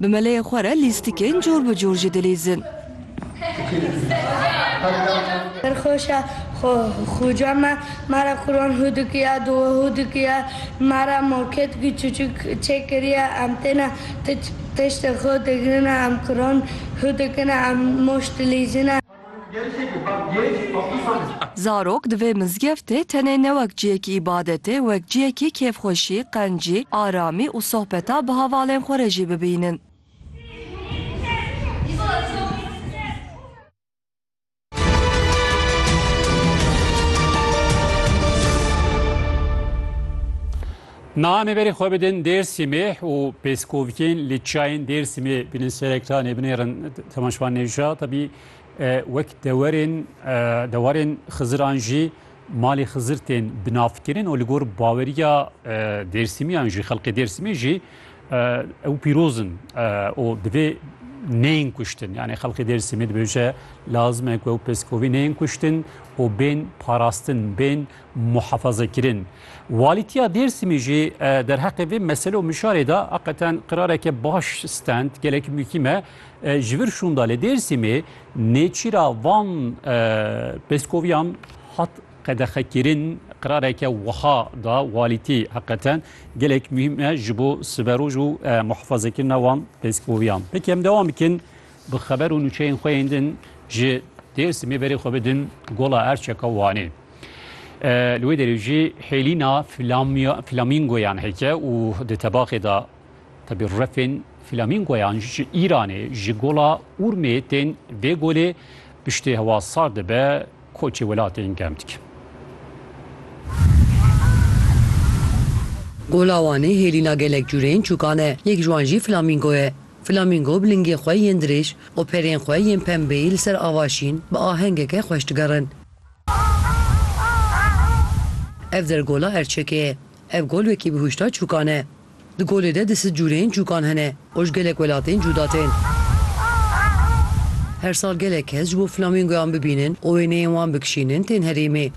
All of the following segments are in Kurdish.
Bi meleyê xwe re lîstikên cor bi cor jî dilîzin. Pir xweş e xuca me me re Quran hû dikiya, dua hû dikiya, me re marketkî çiçik çê kiriye, em têne tiştê xwe digirine, em Quran hû dikine, em moş dilîzine. Zarok di vê mizgeftê tenê ne wek ciyekî îbadetê, wek ciyekî kêfxweşî, qencî, aramî û sohbeta bi havalên xwe re jî bibînin. Namê berê xwe bidin Dêrsimê û pêskovikên li çiyayên Dêrsimê bînin serektanê binêrin temaşvan nêja tabî wek dewerên dewarên Xiziran jî malê Xizir tên binavkirin û li gor baweriya Dêrsimiyan jî xelkê Dêrsimê jî ew pîrozin û divê neyên kuştin yani xelkê Dêrsimê dibêje lazim e ku ew pêskovî neyên kuştin û bên parastin bên muhefazekirin. Walîtiya Dêrsimî jî derheqê vê mesele û mişarê de eqeten qirareke baş stend gelek muhîm e. Ji vir şûnda li Dêrsimê nêçîra van pêskoviyan hat qedexekirin qirareke wiha da walîtî heqeten gelek muhîm e ji bo siberoj û muhefazekirina wan pêskoviyan. Peki em dewam bikin bi xeber û nûçeyên xwe yên din ji Dêrsimê berê xwe bidin Gola Erçeka Wanê. Li wê derê jî hêlîna flamîngoyan heke û di tebaxê de tebî refên flamîngoyan ji Îranê ji gola Urmê tên vê golê piştê hewa sar dibe koçê welatên germ dikin. Gola Wanê hêlîna gelek cûrên çûkan e, yek ji wan jî flamîngo ye. Flamîngo bi lingên xwe yên dirêj û perên xwe yên pembeyî li ser ava şîn bi ahengeke xweş digerin. Ev der gola Erçekê ye. Ev gol wekî bi hûşdar çûkan e. Di golê de di sid cûreyên çûkan hene û ji gelek welatên cûda tên. Her sal gelek kes ji bo flamingoyan bibînin û wêneyên wan bikişînin tên herêmê.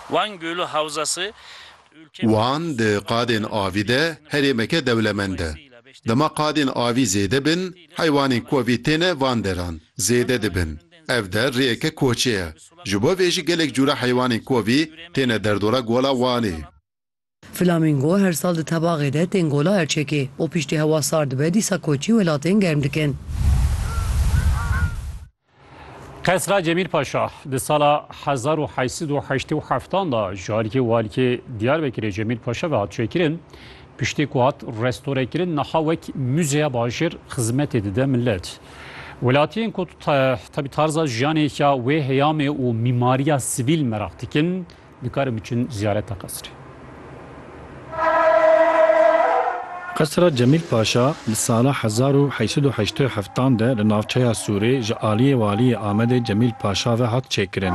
Wan Gölü Havzası Wan di qadên avî de herêmeke dewlemend e. Dema qadên avî zêde bin, heywanên ku vê têne van deran zêde dibin. Ev der rêyeke koçê ye. Ji bo vê jî gelek cûre heywanên ku vê têne derdora Gola Wanê. Flamingo her sal di tebaxê de tên Gola Erçekê û piştî hewa sar dibe dîsa koçî welatên germ dikin. Qesra Cemîl Paşa di sala hezar û heşt sed û heştê û heftan de ji aliyê waliyê Diyarbekirê Cemîl Paşa ve hat çêkirin. Piştî ku hat restorekirin niha wek muzeya bajêr xizmetê dide milet. Welatiyên ku tebî tarza jiyanê ya wê heyamê û mîmariya sivîl meraq dikin Dikarin biçin ziyareta qesrê. Qesra Cemîl Paşa li sala hezar û heşt sed û heştê û heft an de li navçeya Sûrê ji aliyê Waliyê Amedê Cemîl Paşa ve hat çêkirin.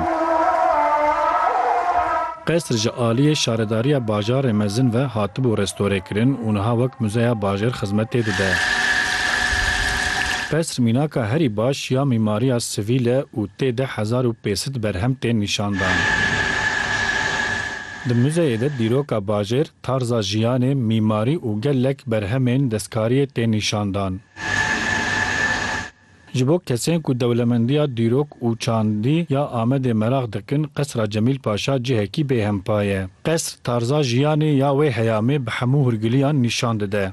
Qesr ji aliyê Şaredariya Bajarê Mezin ve hatibû restorêkirin û niha wek muzeya bajêr xizmetê dide. Qesr mînaka herî baş ya mîmariya sivîl e û tê de hezar û pênc di berhem tên nîşandan. Di muzeyê de dîroka bajêr, tarza jiyanê, mîmarî û gelek berhemên destkariyê tên nîşandan. Ji bo kesên ku dewlemendiya dîrok û çandî ya Amedê meraq dikin, Qesra Cemîl Paşa cihekî bêhempa ye. Qesr tarza jiyanê ya wê heyamê bi hemû hûrgiliyan nîşan dide.